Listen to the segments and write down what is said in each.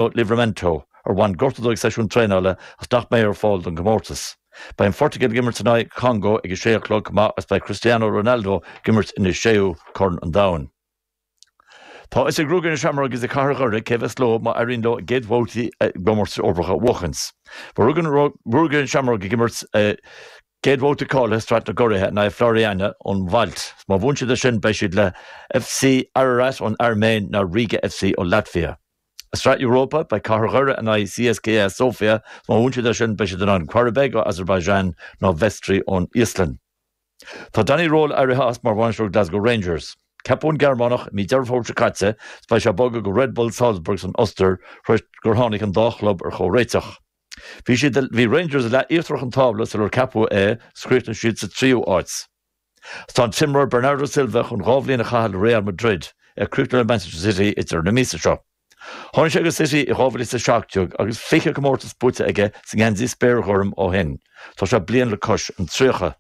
nó Livramento, ar bhain gorta dó ag seisiún traenála agus nach mbeidh ar fáil don gcomórtas. Beidh an Phortaingéil ag imirt in aghaidh an Chongó ag a sé a chlog chomh maith agus beidh Cristiano Ronaldo ag imirt ina séú Corn an Domhain. Tá fhios ag Ruagairí na Seamróige is ag Cathair Dhoire cé a bheas leo má éiríonn leo a gcéad bhabhtaí i gcomórtais Eorpacha a bhuachaint. Beidh Ruagairí na Seamróige ag imirt a gcéad bhabhta cáilithe i Sraith na gCuradh in aghaidh Floriana ón Málta. Má bhuann siad ansin beidh siad le FC Ararat ón Airméin nó Riga FC ón Laitvia. I Sraith Europa, beidh Cathair Dhoire in aghaidh CSKA Sofia, má bhuann siad ansin beidh siad in aghaidh Qarabag ón Asarbaiseáin nó Vestri ón Íoslainn. Tá Danny Röhl éirithe as mar bhainisteoir Glasgow Rangers. Ceapadh an Gearmánach i mí Deireadh Fómhair seo caite agus beidh sé ag bogadh go Red Bull Salzburg san Ostair tar éis gur tháinig an dá chlub ar chomhréiteach. Bhí, bhí Rangers i leath íochtarach an tábla sular ceapadh é agus chríochnaigh siad sa tríú háit. Is tá an t-imreoir Bernardo Silva chun dhá bhliain a chaitheamh le Real Madrid, ar chríochnú le Manchester City ag deireadh na míosa seo. Tháinig sé go City i 2017 agus 20 comórtas buaite aige sa ngeansaí spéirghorm ó shin. Tá sé bliain le cois an tríocha.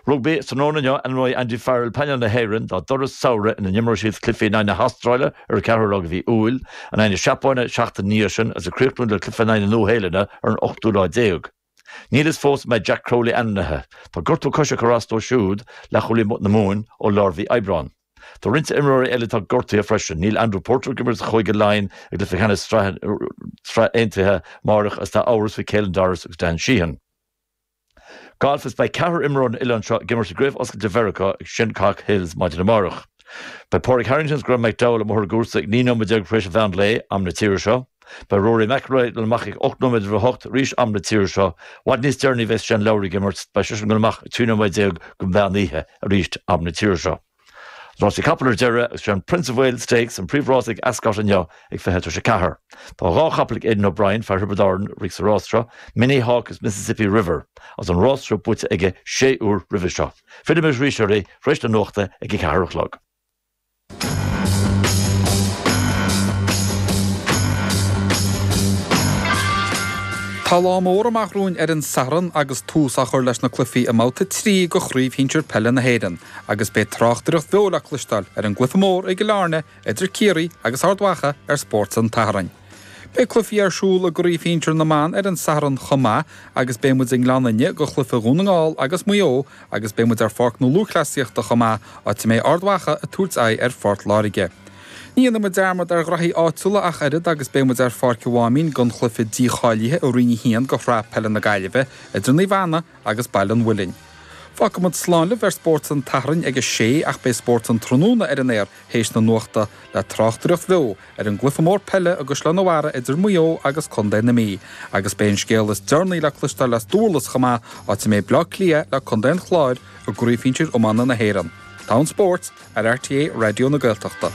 Rugbaí, Tráthnóna inniu ainmneoidh Andy Farrell painéal na hÉireann dá dturas samhraidh ina n-imreoidh siad cluichí in aghaidh na hAstráile ar an 4ú lá de mhí Iúil, in aghaidh na Seapáine seachtain ina dhiaidh sin agus ag críochnú le cluiche in aghaidh na Nua-Shéalainne ar an 8ú lá déag. Níl fhios fós an mbeidh Jack Crowley ainmnithe. Tá gortú coise ag cur as dó siúd, leathchúlaí na Mumhan, ó lár mhí Aibreáin. Tá roinnt imreoirí eile atá gortaithe freisin. Níl Andrew Porter ag imirt do Chúige Laighean i gcluiche ceannais na Sraithe Aontaithe amárach agus tá amhras faoi Caelan Doris agus Dan Sheehan. Galf is Beidh ceathrar imreoir ón oileán seo ag imirt i gCraobh Oscailte Mheiriceá ag Shinnecock Hills maidin amárach. Beidh Pádraig Harrington agus Graeme McDowell amuigh ar an gcúrsa ag 19 nóiméad tar éis a mheán lae, am na tíre seo. Beidh Rory McIlroy ag dul amach ag 8 nóiméad roimh a hocht arís am na tíre seo. I bhfad níos deireanaí a bheas Shane Lowry ag imirt, beidh seisean ag dul amach ag 13 nóiméad go meán oíche arís am na tíre seo. Is rásaí capall ar deireadh agus is é an Prince of Wales Stakes an príomhrása ag Ascot inniu ag 20 tar éis a ceathair. Tá dhá chapall ag Aidan O'Brien, fear Thiobraid Árann, ag rith sa rás seo, Minnie Hauk agus Mississippi River, agus an rás seo buaite aige sé uair roimhe seo. Fillfidh muid arís oraibh tar éis na nuachta ag a ceathair a chlog. Tá lá mór amach romhainn ar an Satharn agus tús á chur leis na cluichí i mBabhta 3 de Chraobh Shinsir Peile na hÉireann agus beidh tráchtaireacht bheo le cloisteáil ar an gcluiche mór i gCill Airne idir Ciarraí agus Ard Mhacha ar Spórt an tSathairn. Beidh cluichí ar siúl i gcraobh shinsir na mban ar an Satharn chomh maith agus beidh muid i nGleann Fhinne do chluiche Dhún na nGall agus Maigh Eo agus beidh muid ar Pháirc na Lúthchleasaíochta chomh maith, áit a mbeidh Ard Mhacha ag tabhairt aghaidh ar Phort Láirge. Ní dhéanfaidh muid dearmad ar ghnaithí áitiúla ach oiread agus beidh muid ar Pháirc an Mháimín don chluiche dícháilithe i Roinn 1 de Shraith Peile na Gaillimhe idir Naomh Anna agus Baile an Mhuilinn. Fágfaidh muid slán libh ar Spórt an tSathairn ag a sé ach beidh Spórt an tráthnóna ar an aer théis na nuachta, le tráchtaireacht bheo ar an gcluiche mór peile i gCaisleán an Bharraigh idir Maigh Eo agus Contae na Mí, agus beidh an scéal is deireanaí le cloisteáil as Dúrlas chomh maith, áit a mbeidh Bleá Cliath lé Contae an Chláir i gCraobh Shinsir Iomána na hÉireann. Fón Spórt ar RTÉ Raidió na Gaeltachta.